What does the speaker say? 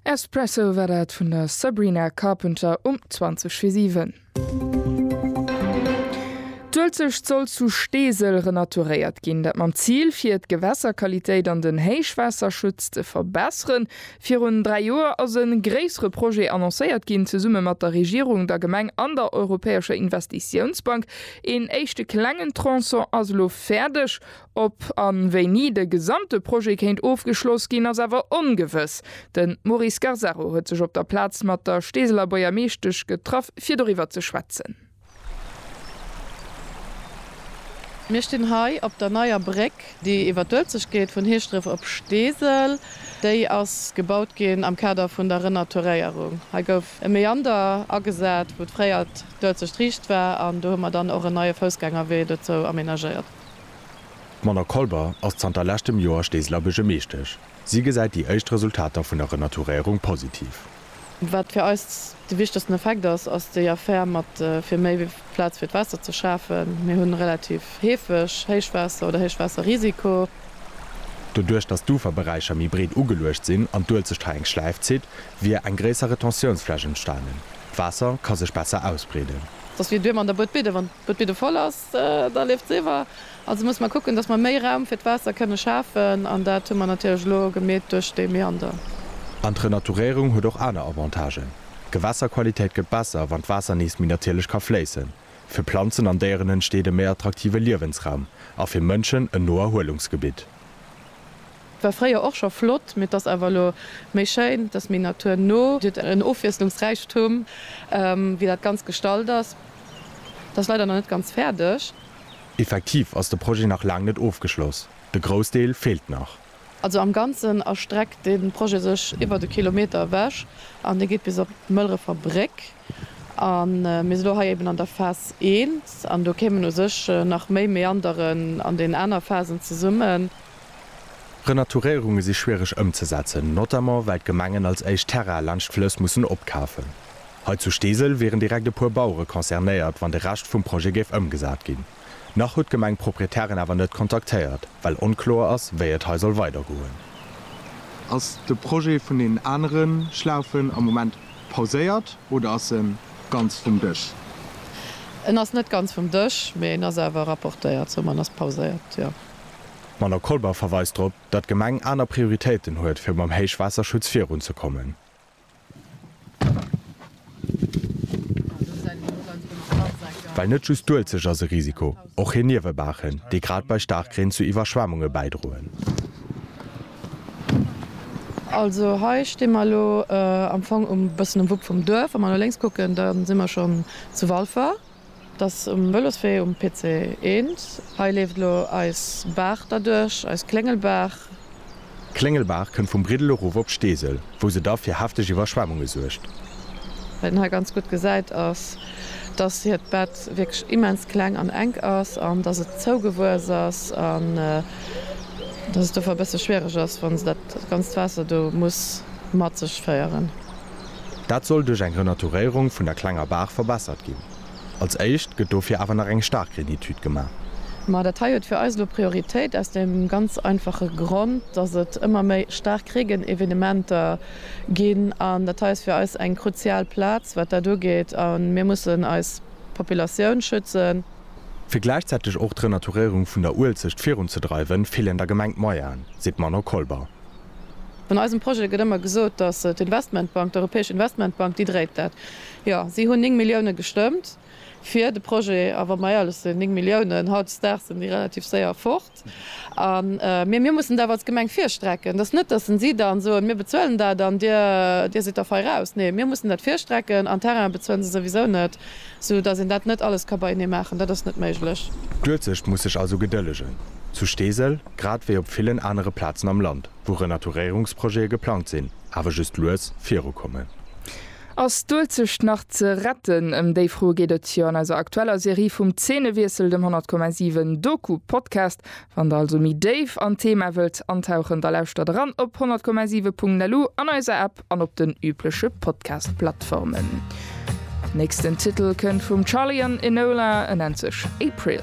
Espresso war dat vun der Sabrina Carpenter um 20 fir 7. D'Uelzecht soll zu Steesel renaturéiert ginn, dat mam Zil fir d'Gewässerqualitéit an den Héichwaasserschutz ze verbesseren. Virun dräi Joer ass e gréissere Projet annoncéiert ginn, zesumme mat der Regierung, der Gemeng an der Europäescher Investitiounsbank. Een éischte klengen Tronçon ass elo fäerdeg. Ob an wéini de gesamte Projet kéint ofgeschloss ginn, ass awer ongewëss. Den Maurice Garzaro huet sech op der Plaz mat der Steeseler Boiermeeschtesch getraff fir doriwwer ze schwätzen. Mir stinn hei op der neier Bréck déi iwwer d'Uelzecht geet vun Hieschdref op Steesel. Déi ass gebaut ginn am Kader vun der Renaturéierung. Hei gouf e Meander agesat wou fréier d'Uelzecht riicht war an do hu mer dann och en neie Foussgängerwee dozou amenagéiert. D'Mona Kolber ass zanter leschtem Joer Steeseler Buergermeeschtesch. Si gesäit déi éischt Resultater vun der Renaturéierung positiv. Wat fir eis de wichtegsten Effekt ass, ass déi Affär mat fir méi Plaz fir d'Waasser ze schafen. Mir hunn relativ heefeg Héichwaasser oder Héichwaasserrisiko. Doduerch, datt d'Uferberäicher méi breet ugeluecht sinn an d'Uelz sech hei eng Schläif zitt, wier eng gréisser Retentiounsfläch entstanen. D'Waasser ka sech besser ausbreeden. Dass wier duer mer an der Buedbidde, wann d'Buedbidde voll ass. Da leeft se iwwer. Also musse mer kucken, datt mer méi Raum fir d'Waasser kënne schafen. An dat hu mer natierlech elo gemeet duerch dee Meander. An d'Renaturéierung huet och aner Avantagen. D'Gewässerqualitéit gëtt besser, wann d'Waasser nees méi natierlech ka fléissen. Fir Planzen an Déieren entsteet e méi attraktive Liewensraum a fir Mënschen en no Erhuelungsgebitt. War fréier och scho flott, mee 't ass awer elo méi schéin, 't ass méi Natur no, 't huet en Ofwiesslungsräichtum, wéi dat Ganzt gestalt ass. 't ass leider nach net ganz fäerdeg. Effektiv ass de Projet nach laang net ofgeschloss, de Groussdeel feelt nach. Also am Ganzen erstreckt de Projet sech iwwert e Kilometer ewech an dee geet bis op d'Mëlrefer Bréck. A mir si lo hei eben an der Phas I an do kéimen u sech nach méi Meanderen an den aner Phasen zesummen. Renaturéierunge si schwiereg ëmzesetzen, notamment well d'Gemengen als éischt Terraine laanscht d'Flëss mussen opkafen. Hei zu Steesel wieren direkt e puer Bauere concernéiert, wann de Rescht vum Projet géif ëmgesat ginn. Nach huet d'Gemeng d'Proprietären awer net kontaktéiert, well onkloer ass, wéi et hei soll weidergoen. Ass de Projet vun deenen anere Schlaufen am Moment pauséiert oder ass e ganz vum Dësch? En ass net ganz vum Dësch, mee en ass awer rapportéiert, soman ass pauséiert, jo. D'Manon Colbert verweist drop, datt d'Gemeng aner Prioritéiten huet, fir mam Héichwaasserschutz virunzekommen. Well net just d'Uelzecht ass e Risiko, och hir Niewebaachen, déi grad bei Staarkreen zu Iwwerschwemmunge bäidroen. Also hei sti mer elo am Fong e bëssen um Wupp vum Duerf. Wa mer no lénks kucken, da si mer schonn zu Walfer. Et ass um Vëloswee um PC 1. Hei leeft elo eis Baach derduerch, eis Kléngelbaach. D'Kléngelbaach kënnt vum Briddel erof op Steesel, wou se da fir hefteg Iwwerschwemmunge suergt. Wat een hei ganz gutt gesäit ass, dass hiert Bett wierklech immens kleng an enk ass an dass et zougewuess ass an dass et dofir e bësse schwiereg ass, wa se dat ganzt Waasser do muss mat sech féieren. Dat soll duerch eng Renaturéierung vun der klenger Baach verbessert ginn. Als éischt gëtt dofir awer nach eng Starkreenetüd gemaach. Ma dat hei huet fir eis elo Prioritéit, aus deem ganz einfache Grond, dass et ëmmer méi Starkreegenevenementer ginn. An dat hei ass fir eis eng kruzial Plaz, wat dat ugeet. A mir mussen eis Populatioun schützen. Fir gläichzäiteg och d'Renaturéierung vun der Uelzecht virunzedreiwen, feelen der Gemeng d'Moyenen, seet d'Manon Kolber. An eisem Projet gëtt ëmmer gesot, datt d'Investmentbank, d'Europäesch Investmentbank, déi dréit dat. Jo, si hunn 9 Milliounen gestëmmt fir de Projet. A wa mer éierlech sinn, 9 Milliounen, hautdesdaags sinn déi relativ séier fort. Mee mir mussen et awer als Gemeng virstrecken. Et ass net, datt si dann soen, mir bezuelen dat an dir sidd dervei raus. Nee, mir mussen dat virstrecken an Terrainen bezuelen se souwisou net. Sou dass een dat net alles ka beienee maachen, dat ass net méiglech. D'Uelzecht muss sech also gedëllegen. Zu Steesel, grad wéi op villen anere Plazen am Land, wou Renaturéierungsprojete geplangt sinn, awer just lues virukommen. Ass d'Uelzecht nach ze retten? Ëm déi Fro geet et jo an eiser aktueller Serie vum Zeenewiessel, dem 100,7 Doku-Podcast. Wann der also méi déif an d'Thema wëllt antauchen, da lauschtert eran op 100,7.lu, an eiser App an op den übleche Podcast-Plattformen. Nächsten Titel kënnt vum Charly an Enola, en nennt sech April.